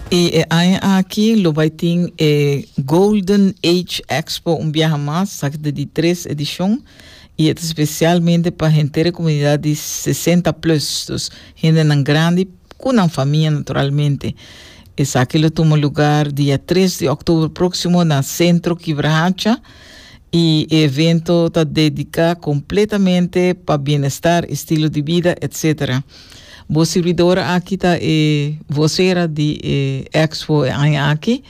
I e aña aki lo bai tin e Golden Age Expo un biaha mas, sa ta di tres edishon, i e ta spesialmente pa henter e komunidat di sesenta plus, dus hendenan grandi ku nan famia naturalmente. Esaki lo tuma lugar dia tres di òktober próksimo na Sentro Kibrahacha, i e evento ta dediká kompletamente pa bienestar, estilo di bida, etsetera. Bo sirbidora aki ta e vocera di e expo e aña aki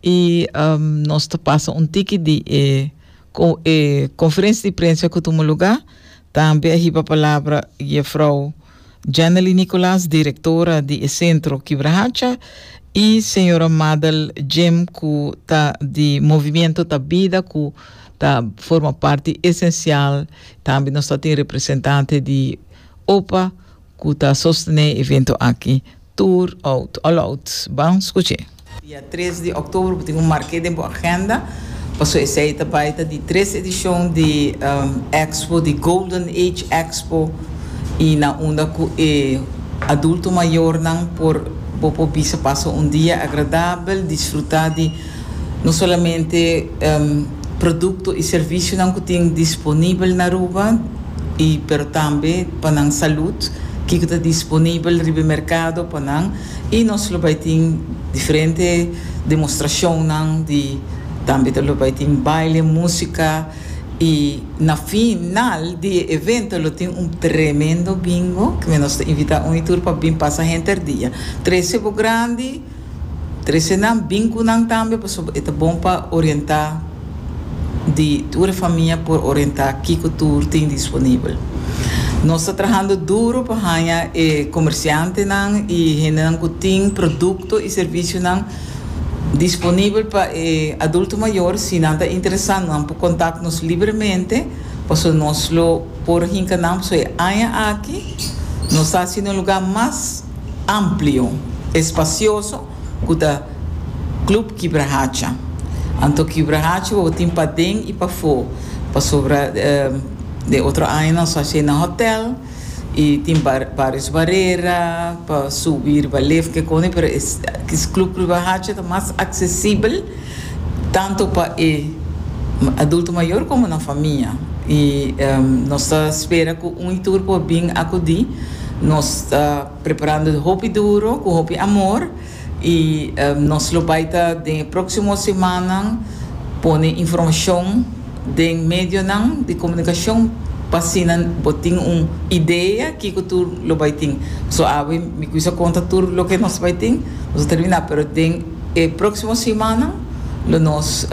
y um, nos ta pasa un tiki di e, co, e conferencia di prensa cu tuma lugar. Tambe a hiba palabra jefrouw Janely Nicolas, directora di e centro Kibrahacha y señora Madel Jim cu ta di Movimiento Ta Bida cu ta forma parti esencial. Tambe nos ta tin representante di Opa cu ta sostene evento aki tur out all out. Ban scuche. Dia tres di october bo tin un marke den bo agenda paso esey ta bay ta di tres edicion di expo di Golden Age Expo y na unda cu e adulto mayornan por bo por bisa pasa un dia agradabel disfruta di No solamente produkto i servisionan ku tin disponibel na Aruba i pero tambe pa nan salud kiko ta disponibel riba e merkado pa nan i nos lo bai tin diferente demostrashonnan di tambe ta lo bai tin baile músika i na final di e evento lo tin un tremendo bingo ke nos ta invitá un i tur pa bin pasa henter dia. Trese bo grandi. Trece nan bin cu nan tambe pasobra e ta bon pa orienta di tur e famia por orienta kico tur tin disponibel. Nos ta trahando duro pa haya e comerciantenan y hendenan cu tin producto y servicionan disponibel pa e adulto mayor. Si nan ta interesado nan por contact nos libremente pasobra nos lo por hinca nan pasobra e aña aki nos ta haciendo un lugar mas. amplio, espasioso cu ta Club Kibra Hacha. Anto Kibra Hacha bobo tin paden y pafo pasobra den otro aña nos haci na hotel y tin varios barera pa subi riba lif kiconi pero es Club Kibra Hacha ta mas accesibel. tantu pa e adulto mayor como nan famia, y nos ta spera cu un y tur por bin acudi, nos ta preparando hopi duro cu hopi amor y nos lo bay ta den e proximo semannan pone informacion den medionan di comunicacion pa asina bo tin un idea kico tur lo bay tin, so awe mi cusa conta tur loke nos bay tin, nos a termina pero den. E próksimo simanan lo nos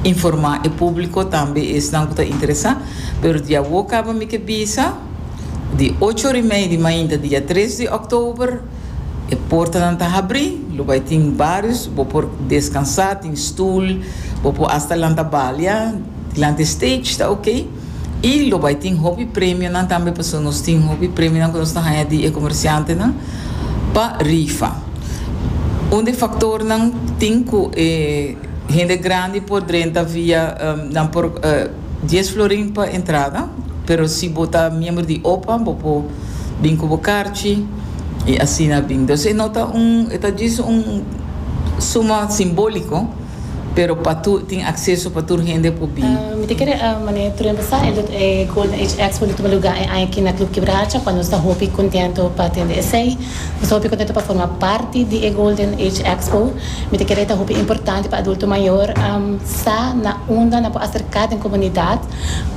informá e públiko, tambe esnan ku ta interesá. Pero di awor kaba mi ke bisa, di ocho ora i mei di mainta dia tres di òktober e portanan ta habrí, lo bai tin barios bo por deskansá, tin stùl, bo por asta lanta balia dilanti e stage, ta okey. Y lo bay tin hopi premionan tambe pasobra nos tin hopi premionan cu nos ta haya di e comerciantenan pa rifa. Un di e factornan tin cu e hende grandi por drenta via, nan por dies florin pa entrada, pero si bo ta miembro di opa bo por bin cu bo carchi y asina bin. Entonces e no ta un, e ta djis un suma simbolico. Pero pa tur, tin acceso pa tur hende por bin. Mi ta kere a mane Trujan Basa el ta e Golden Age Expo lo tuma luga e aña aki na Club Kibracha cuando nos ta hopi contento pa tende esey. Nos ta hopi contento pa forma parti di e Golden Age Expo. Mi ta kere e ta hopi importante pa adulto mayor sa na unda nan por acerca den comunidad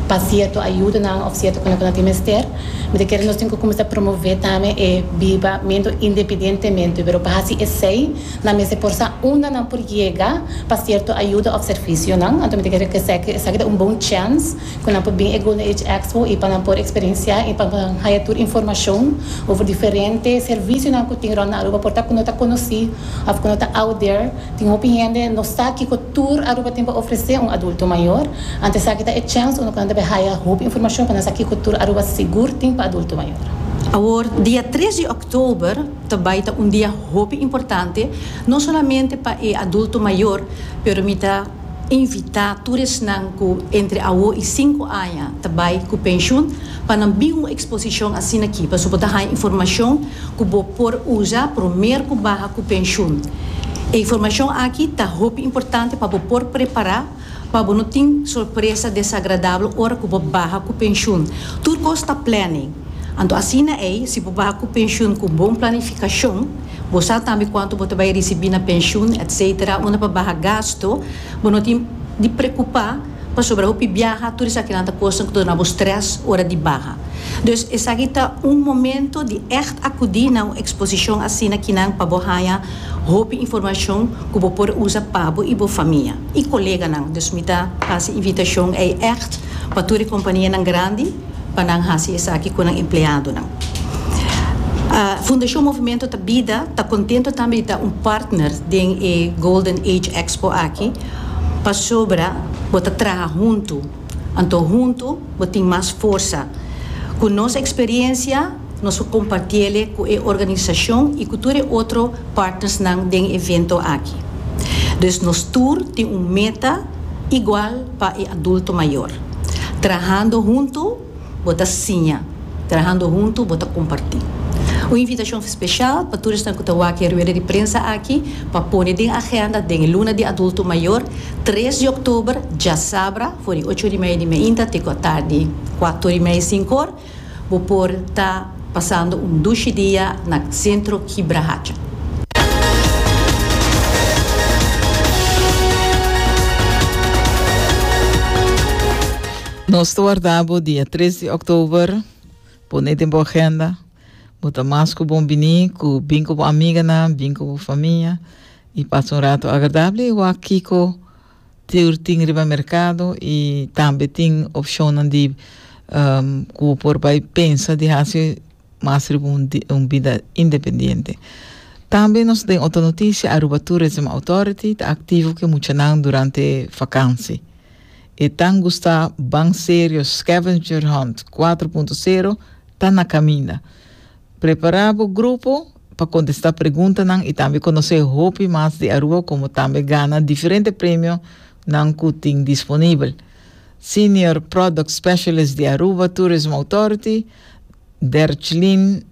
pa cierto ayudanan of cierto cona cu nan tin mester. Mi ta kere nos tin cu cuminsa promove tambe e bibamento independientemente pero pa haci esey. Nan mester por sa unda nan por yega pa sierto ayuda òf servisionan. Anto mi ta kere ke sèki esaki ta un bon chèns ku nan por bin e Golden Age Expo i pa nan por eksperensiá i pa nan haya tur informashon over diferente servisionan ku tin rònt Aruba. Por ta ku no ta konosí òf ku no ta out there. Tin hopi hende no sa kiko tur Aruba tin pa ofresé un adulto mayor. Anto esaki ta e chèns unda ku nan ta bin haya hopi informashon pa nan sa kiko tur Aruba sigur tin pa adulto mayor. Awor, dia tres di. Oktober ta bai ta un dia hopi importante, no solamente pa e adulto mayor, pero mi ta invita tur esnan cu entre awo y sinku aña ta bai cu pensioen pa nan bin un exposicion asina aki pasobra bo ta haña informacion cu bo por usa promer cu baha cu pensioen. E informacion aki ta hopi importante pa bo por prepara. pa bo no tin sorpresa desagradabel ora ku bo baha ku penshun. Tur kos ta plane. Anto asina ei, si bo baha ku penshun ku bon planifikashon, bo sa tambe kuantu bo ta bai risibí na penshun, etc. Unda pa baha gastu, bo no tin di prekupá pasobra hopi biaha, tur esakinan ta kosnan ku ta duna bo strès ora di baha. Dus esaki ta un momento di ègt akudí na un eksposishon asina kinan pa bo haña Hopi informashon ku bo por usa pabo i bo famia i koleganan, dus mi ta hasi invitashon ei ègt pa tur e kompanianan grandi pa nan hasi esaki ku nan empleadonan. Fundashon Movimento ta bida ta kontentu tambe di ta un partner den e Golden Age Expo aki pasobra bo ta traha huntu, anto huntu bo tin mas forsa ku nos eksperiensia, Nos por compartiele cu e organisacion y cu tur e otro partnersnan den e evento aki. Dus nos tur tin un meta igual pa e adulto mayor. Trahando hunto bo ta siña, trahando hunto bo ta comparti. Un invitacion special pa tur esnan cu ta wak e rueda di prensa aki pa pone den agenda den e luna di adulto mayor, tres di oktober, djasabra, for di ocho orimei di mainta te cu atardi cuato orimei, sincor. Bo por ta pasando un dushi dia na Centro Kibra Hacha. Nos ta warda bo dia tres di Oktober. Pone den bo agenda. Bo ta mas ku bon bini ku bin ku bo amiganan, bin ku bo famia i pasa un ratu agradabel i wak Kiko. Tur tin riba merkado i tambe tin opshonnan di ku bo por bai pensa di hasi mas riba un un bida independiente. Tambe nos den otro notisia, Aruba Tourism Authority ta aktivo ku e muchanan durante vakansi. E tan gusta ban serio Scavenger Hunt kuatro punto sero ta na kaminda. Prepara bo grupo. pa kontestá preguntanan i tambe konosé hopi mas di Aruba komo tambe gana diferente premionan ku tin disponibel. Senior Product Specialist di Aruba Tourism Authority, Derchlyn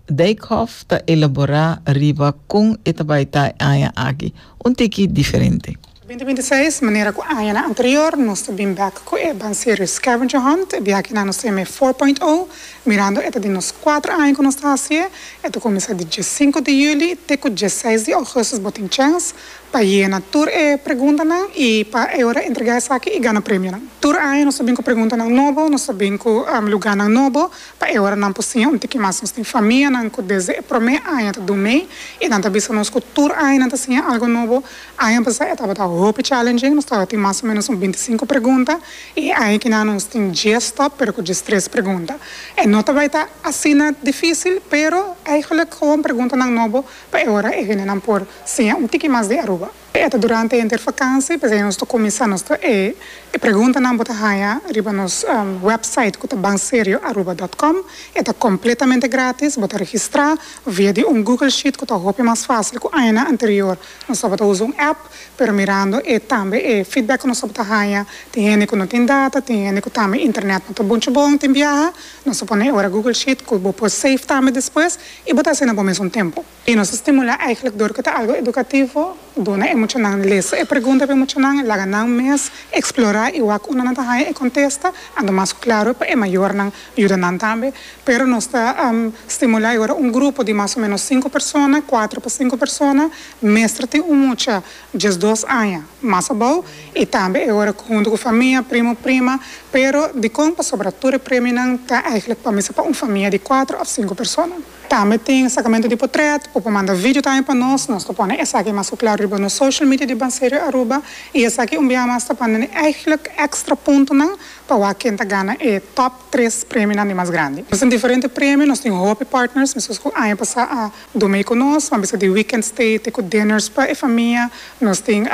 Dijkhoff ta elaborá riba kon e ta bai ta e aña aki un tiki diferente. Binti binti seis, Manera ku añanan anterior, nos ta bin bek ku e banserio Scavenger Hunt. E biaha nan nos ta yama e four point o. Mirando e ta di nos kuater aña ku nos ta hasié. E ta kuminsá di diescinco di juli te ku diesseis di ougustus. Bo tin chèns pa yena tur e preguntanan i pa e ora entregá esaki i gana premionan. Tur aña nos ta bin ku preguntanan nobo, nos ta bin ku lugánan nobo pa e ora nan por siña un tiki mas. Nos tin famianan ku desde e promé aña ta dun mei i nan ta bisa nos ku tur aña nan ta siña algu nobo. Aña pasá e tabata hopi challenging, nos tabatin mas o ménos un binti sinku pregunta i e aña kiná nos tin dies tòp pero ku dies tres pregunta. E no ta bai ta asina difísil pero eigelik gewoon preguntanan nobo pa e ora e hendenan por siña un tiki mas di Aruba. E ta durante henter fakansi p'esei nos ta kuminsá nos ta e e preguntanan bo ta haña riba nos wèpsait ku ta banserioaruba dòt kòm. E ta kompletamente grátis, bo ta registrá via di un Google Sheet ku ta hopi mas fásil ku añanan anterior. Nos tabata usa un app, pero mirando e tambe e feedback ku nos tabata haña, tin hende ku no tin data, tin hende ku tambe internet no ta bunchi bon, tin biaha, nos ta pone ora Google Sheet ku bo por save tambe despues i bo ta hasi na bo mes un tempu. I nos ta stimulá eigenlijk dor ku ta algu edukativo, duna e muchanan lesa e pregunta pa e muchanan, laga nan mes eksplorá i wak unda nan ta haña e kontesta, anto mas ku klaru pa e mayornan yuda nan tambe, pero nos ta stimulá i ora un grupo di mas o ménos sinku persona, kuater pa sinku persona, mester tin un mucha diesdos aña mas abou, i tambe e ora ku huntu ku famia, primu, prima, pero dikon pasobra tur e premionan ta eigenlijk pa mester pa un famia di kuater òf sinku persona. Tambe tin sacamento di potret, bo por manda video tambe pa nos, nos ta pone esaki mas cu claro riba nos social media di Banserio Aruba y esaki un biaha mas ta pand'e eigenlijk extra puntonan pa wak ken ta gana e top tres premionan di mas grandi. Nos tin diferente premio, nos tin hopi partners mescos cu aña pasa a dumei cu nos, a bisa di weekend stay te cu dinners pa e famia, nos tin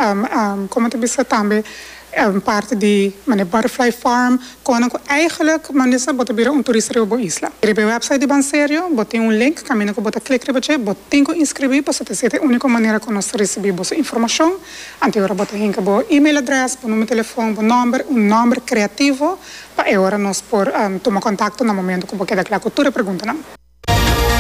como ta bisa tambe. Un parti di mane Butterfly Farm, konan ku eigenlik manesa bo ta bira un turista riba bo isla. Riba e website di Banserio bo tin un link kaminda ku bo ta klik riba dje, bo tin ku inskribí pasobra ta ser e úniko manera ku nos ta risibí boso informashon. Anto e ora bo ta hinka bo email adrès, bo numer telefòn, bo nòmber, un nòmber kreativo pa e ora nos por tuma kontakto na momentu ku bo keda kla ku tur e preguntanan.